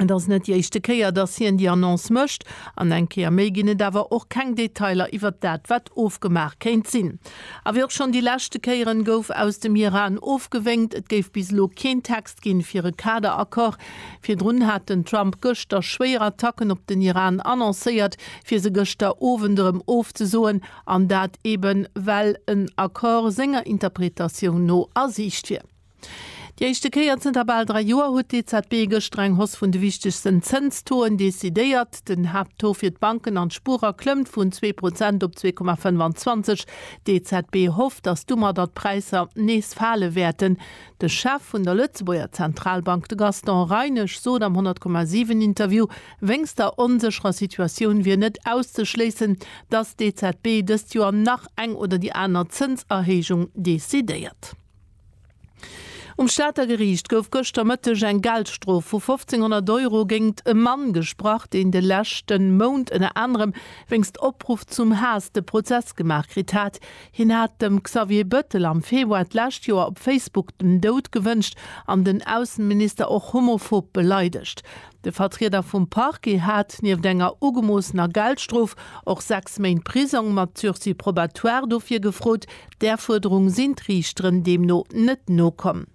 Et ass net déi éischte Kéier, datt hien déi Annonce mécht. An eng Kéier méi ginn et awer och keng Detailer iwwert dat, wat ofgemaach kéint sinn. A wéi och schonn déi leschte Kéieren, gouf aus dem Iran ofgewénkt, et géif bis elo keen Text ginn, fir e Kaderaccord. Virdrun hat den Trump gëschter schwéier Attacken op den Iran annoncéiert, fir se gëschter Owend erëm ofzesoen. An dat eeben, well en Accord senger Interpretatioun no a Siicht wier. Déi éischte Kéier zënter bal dräi Joer huet d'EZB gëschter eng Hausse vun de wichtegsten Zënstoen decidéiert. Den Haapttaux fir d'Banken an d'Spuerer klëmmt vun zwee Prozent op zwee Komma 25. D'EZB hofft, datt domadder d'Präisser nees fale wäerten. De Chef vun der Lëtzebuerger Zentralbank, de Gaston Reinesch, sot am 100,7 Interview, wéinst der onsécherer Situatioun wier net auszeschléissen, datt d'EZB dëst Joer nach eng oder déi aner Zënserhéijung decidéiert. Um Stater Geriicht gouf gëschter Mëtteg eng Geldstrof vu 1.500 Euro géingt e Mann gesprach, deen de leschte Mount ënner anerem wéinst Opruff zum Haass de Prozess gemaach kritt hat. Hien hat dem Xavier Bëttel am Februar d'lescht Joer op Facebook den Doud gewënscht an den Ausseminister och homophob beleidegt. De Vertrieder vum Parquet hat nieft enger ugemoossener Geldstrof och sechs Méint Prisong mat Sursis probatoire dofir gefrot, Där Fuerderung sinn d'Riichteren deemno net nokomm.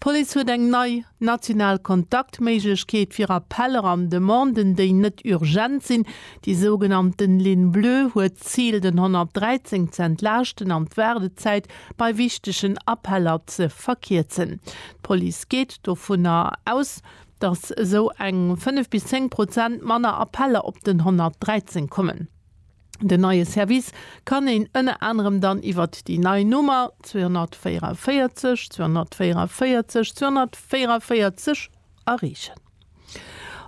D'Police huet eng nei national Kontaktméiglechkeet fir Appeller an Demanden, déi net urgent sinn. Déi sougenannten Ligne bleue huet d'Zil, den 113 ze entlaaschten an d'Waardezäit bei wichtegen Appeller ze verkierzen. D'Police geet dovunner aus, datt esou eng 5 bis 10 Prozent manner Appeller op den 113 kommen. Den neie Service kann een ënner anerem dann iwwert déi nei Nummer 244 244 244 erreechen.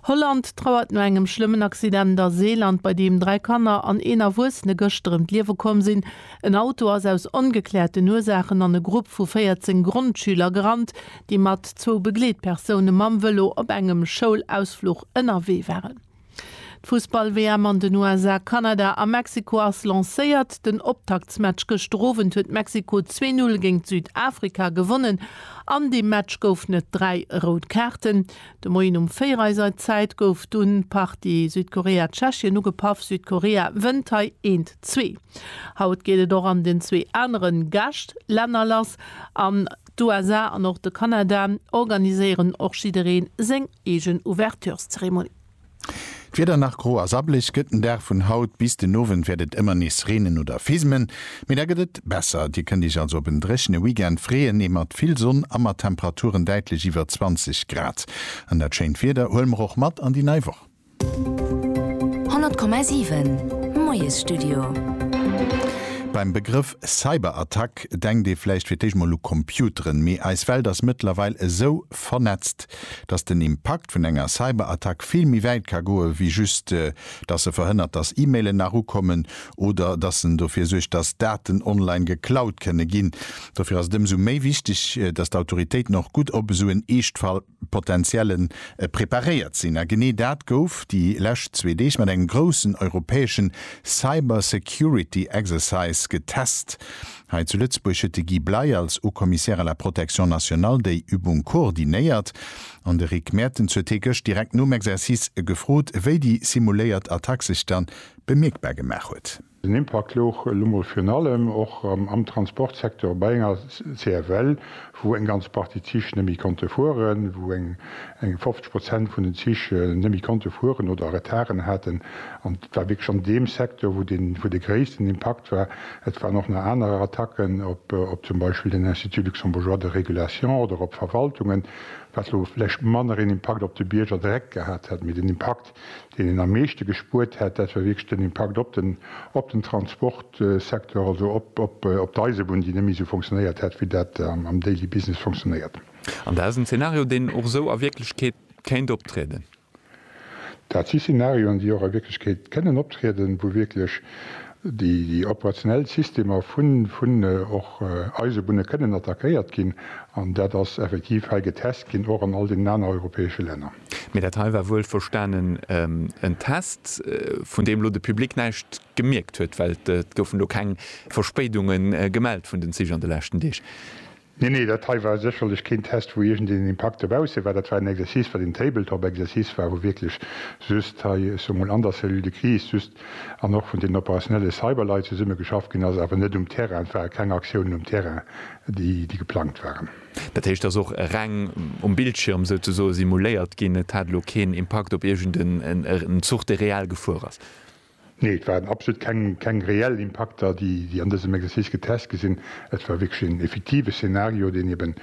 Holland trauert no engem schlëmmen Accident a Seeland, bei deem dräi Kanner an een Erwuessene gëschter ëm d'Liewe komm sinn. En Auto ass aus ongekläerten Ursaachen an e Grupp vu 14 Grondschüler gerannt, déi mat zwou Begleetpersoune mam Vëlo op engem Schoulausfluch ënnerwee waren. D'Fussball-WM an den USA, Kanada a Mexiko ass lancéiert. Den Optaktsmatch gëschter Owend huet Mexiko 2-0 géint Südafrika gewonnen. An deem Match goufen et 3 rout Kaarten. De Moien um 4 eiser Zäit gouf dunn d'Partie Südkorea-Tschechien ugepaff. Südkorea wënnt hei 1, 2. Haut geet et och an den zwee anere Gäschtlänner lass. An d'USA an och de Kanada organiséieren och jidderee seng eegen Ouvertureszeremonie. D'Wieder nach gro a sabbelech gëtt den Dag vun haut. Bis den Owend wäert et ëmmer nees reenen oder fismen, mee da gëtt et besser. Dir kënnt iech also op en dréchene Weekend freeën, ee mat vill Sonn a mat Temperaturen däitlech iwwer 20 Grad. An dat schéint Wieder huele mer och mat an déi nei Woch. 100,7 Moiesstudio. Beim Begrëff Cyberattack denkt ee vläicht fir d'éischt mol u Computeren, mee eis Welt ass mëttlerweil esou vernetzt, dass den Impakt vun enger Cyberattack vill méi wäit ka goe wéi just, dass se verhënnert, dass E-Mailen nach ukommen oder dass en dofir suergt, dass Daten online geklaut kënne ginn. Dofir ass et ëmsou méi wichteg, dass d'Autoritéiten och gutt op esou en Eeschtfall. Potentiellen preparéiert sinn. A genee dat gouf déi lescht zwee Deeg mat engem groussen europäeschen Cyber Security Exercise getest. Hei zu Lëtzebuerg huet de Guy Bley als Haut Commissaire à la Protection nationale déi Übung koordinéiert an de Rick Mertens huet hie gëscht direkt nom Exercice gefrot, wéi déi simuléiert Attack sech da bemierkbar gemaach huet. Den Impakt louch elo mol virun allem och am Transportsecteur bei enger CFL, wou eng ganz Partie Zich net méi konnte fueren, wou eng 50 Prozent vun den Zich net méi konnte fueren oder Retarden haten. An et war wierklech an deem Secteur, wou de gréissten Impakt war. Et waren och nach aner Attacken op zum Beispill den Institut luxembourgeois de régulation oder op Verwaltungen, wat elo vläicht manner een Impakt op de Bierger direkt gehat hätt, mee den Impakt Deen een am meeschte gespuert hätt, dat war wierklech den Impakt op den, op den Transportsecteur, also op, op, op d'Eisebunn, déi net méi esou fonctionnéiert hätt, wéi dat am, am daily business fonctionnéiert. An dat ass en Zeenario, deen och esou a Wierklechkeet kéint optrieden? Dat si Zeenarioen, déi och a Wierklechkeet kënnen optrieden, wou wierklech déi, déi operationell Systemer vun, vun och Eisebunne kënnen attackéiert ginn. An dat ass effektiv hei getest ginn, och an all deenen aner europäesche Länner. Mee dat hei war wuel verstanen en Test, vun deem elo de Public näischt gemierkt huet, well et goufen elo keng Verspéidunge gemellt vun den Zich an de leschten Deeg. Nee, nee, dat hei war sécherlech keen Test, wou iergendeen Impakt dobausse war. Dat war en Exercice, wat een Tabletop-Exercice war, wou wierklech just hei, ech soe mol an der Cellule de crise just an och vun deenen operationelle Cyberleit zesummegeschafft ginn ass, awer net um Terrain. Et ware keng Aktiounen um Terrain, déi geplangt waren. Dat heescht, dass och reng um Bildschirm souzesoen simuléiert ginn, et hat elo keen Impakt op iergend en Zuch, dee reell gefuer ass? Nee, et waren absolut keng reell Impakter, déi an dësem Exercice getest gi sinn. Et war wierklech en effektive Szenario, deen eben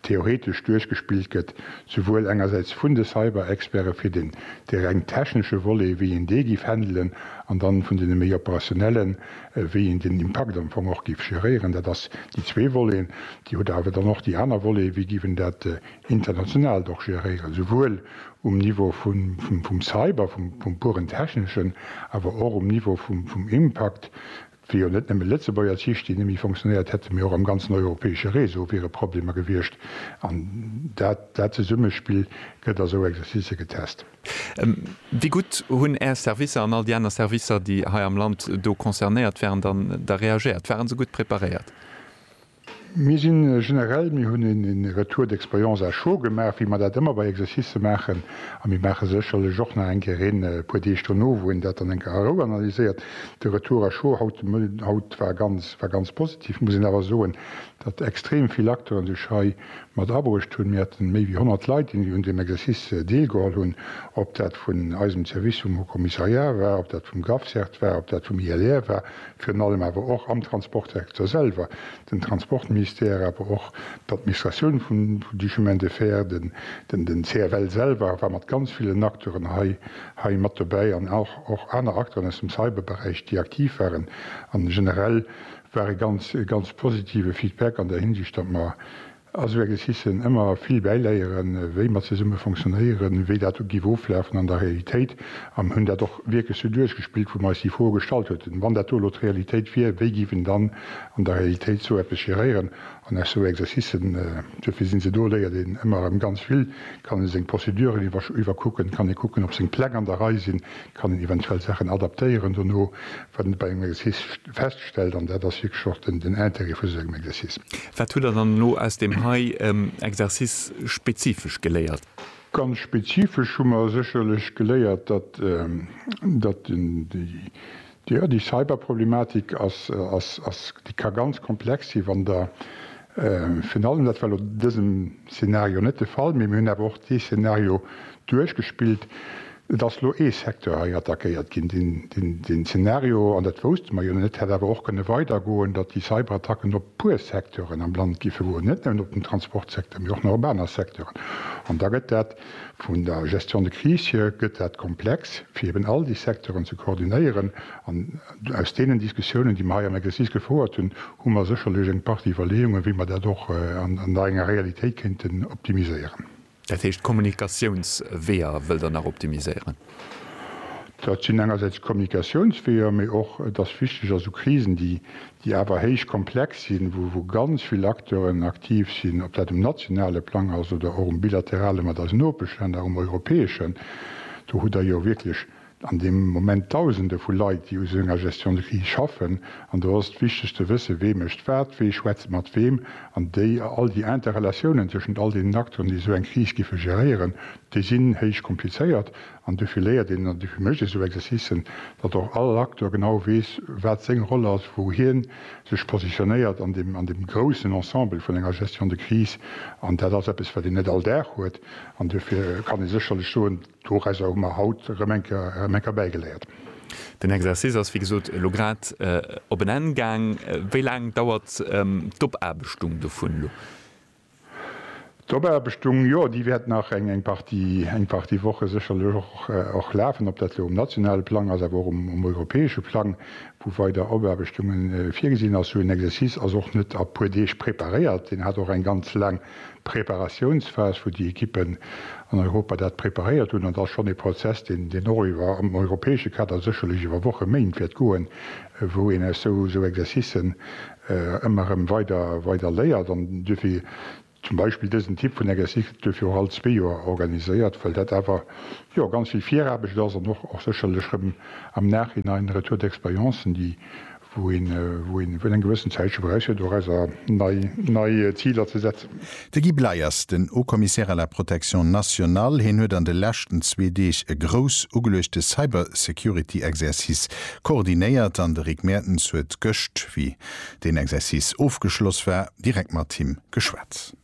theoretesch duerchgespillt gëtt, souwuel engersäits vun de Cyber-Experte fir dee reng technesche Volet, wéi een dee giff handelen, an dann vun deene méi operationellen, wéi een den Impakt am Fong och giff geréieren. Dat ass déi zwee Voleten. Dir hutt awer dann och déi aner Voleten, wéi giff en dat Internationalt och géréieren, souwuel um Niveau vum Cyber, vum puren Techneschen, awer och um Niveau vum Impakt, wéi jo net nëmme Lëtzebuerger Zich, déi nëmme fonctionnéiert hätten, mee och am ganzen europäesche Réseau wiere Problemer gewiescht. An dat, dat Zesummespill gëtt a sou Exercicë getest. Wéi gutt hunn Är Servicer an all déi aner Servicer, déi hei am Land do concernéiert wären, dann da reagéiert? Ware se gutt preparéiert? Mir si generell, mir hunn e Retour d'expérience à chaud gemaach, wéi mer dat ëmmer bei Exercicë maachen. A mir maache sécherlech och nach eng Kéier een, e puer Deeg dono, wou een dat dann eng Kéier a Rou analyséiert. De Retour à chaud haut war ganz, war ganz positiv, muss een awer soen, datt extrem vill Acteuren sech hei mat abruecht hunn. Mir haten méi wéi 100 Leit, déi un deem Exercice deelgeholl hunn, ob dat vun eisem Service vum Haut-Commissariat war, ob dat vum GAFSERT war, ob dat vum ILR war, virun allem awer och am Transportsecteur selwer, den Transportministère, awer och d'Administratioun vun du Chemin de fer, den CFL selwer war mat ganz villen Acteuren hei mat dobäi an och aner Acteuren aus dem Cyberberäich, déi aktiv waren. A generell war e ganz positive Feedback an där Hinsicht, datt mer Also Här Gecissen, ëmmer vill bäiléieren, wéi mer zesumme fonctionnéieren, wéi dat do giff oflafen an der Realitéit, an hunn dat och wierklech sou duerchgespillt, wou mer eis déi Froe gestallt hueten, wann dat do elo d'Realitéit wier, wéi giff en dann an der Realitéit sou eppes geréieren? An aus sou Exercicen, duerfir sinn se do, léiert een ëmmer erëm ganz vill, kann ee seng Prozeduren iwwer iwwerkucken, kann ee kucken, ob seng Pläng an der Rei sinn, Kann een eventuell Saachen adaptéieren dono, wat een bei engem Exercice feststellt, an dat ass wierklech och den Intérêt vu esou engem Exercice. Wat hutt Der dann elo aus deem hei Exercice spezifesch geléiert? Ganz spezifesch hu mer sécherlech geléiert, datt, datt den, déi, jo, déi Cyberproblematik ass, ass, ass, déi ka ganz komplex si wann Der Virun allem, dat war elo an dësem Szenario net de Fall, mee mir hunn awer och dee Szenario duerchgespillt, et ass elo ee Secteur hei attackéiert ginn, deen Szenario, an dat wousste mer jo net, hätt awer och kënne weidergoen, datt déi Cyberattacken op e puer Secteuren am Land géife goen, net nëmmen op den Transportsecteur, mee och nach op aner Secteuren. An da gëtt dat vun der Gestion de crise hier gëtt dat komplex, fir eeben all déi Secteuren ze koordinéieren. Aus deenen Diskussiounen, déi mer hei am Exercice gefouert hunn, hu mer sécherlech eng Partie Iwwerleeungen, wéi mer dat och an der enger Realitéit kéinten optimiséieren. Dat heescht, d'Kommunikatiounsweeër wëllt Der nach optimiséieren? Dat sinn engersäits d'Kommunikatiounsweeër, mee och et ass wichteg, also Krisen, déi awer héich komplex sinn, wou ganz vill Acteuren aktiv sinn, ob dat um nationale Plang ass oder och um bilaterale mat eisen Nopeschlänner, um europäeschen, do hutt Der jo wierklech an deem Moment Dausende vu Leit, déi u sou enger Gestion de crise schaffen, an do ass et wichteg ze wëssen, wee mécht wat, wee schwätzt mat weem, an déi all déi Interrelatiounen tëschent all deenen Acteuren, déi esou eng Kris giffe geréieren, déi sinn héich komplizéiert. An dofir léiert een, an dofir mécht ee sou Exercicen, datt och all Acteur genau weess, wat seng Roll ass, wou hie sech positionéiert an deem, an deem groussen Ensemble vun enger Gestion de crise. An dat ass eppes, wat een net all Dag huet, an dofir kann ee sécherlech soen, Dorausser hu mer haut erëm eng Kéier erëm eng Kéier bäigeléiert. Den Exercice ass wéi gesot elo grad op en Enn gaang. Wéi laang dauert d'Opaarbechtung dovun elo? D'Opaarbechtung, jo, déi wäert nach eng, eng Partie, eng Partie Woche sécherlech och, och lafen. Ob dat elo um nationale Plang ass, awer och um, um europäesche Plang, wou weider Opaarbechtunge virgesinn ass. Sou en Exercice ass och net a puer Deeg preparéiert. Deen hat och eng ganz laang Preparatiounsphas, wou déi Ekippen an Europa dat preparéiert hunn, an dat ass schonn ee Prozess, deen och iwwer, am europäesche Kader, sécherlech iwwer Wochen, Méint wäert goen, wou een aus esou Exercicen ëmmer erëm weider, weider léiert. An duerfir, zum Beispill dësen Typ vun Exercice gëtt duerfir och all zwee Joer organiséiert, well dat awer, jo, ganz vill Viraarbecht ass an och, och sécherlech erëm am Nachhinein Retour d'expériences, déi, wou een wou eng gewëssen Zäit scho brauch fir do Häiser nei nei Ziler ze setzen. De Guy Bleiers, den Haut-Commissaire à la Protection nationale, hien huet an de leschten zwee Deeg e grouss ugeluechte Cybersecurity-Exercice koordinéiert an de Rick Mertens huet gëscht, wéi deen Exercice ofgeschloss war, direkt mat him geschwat.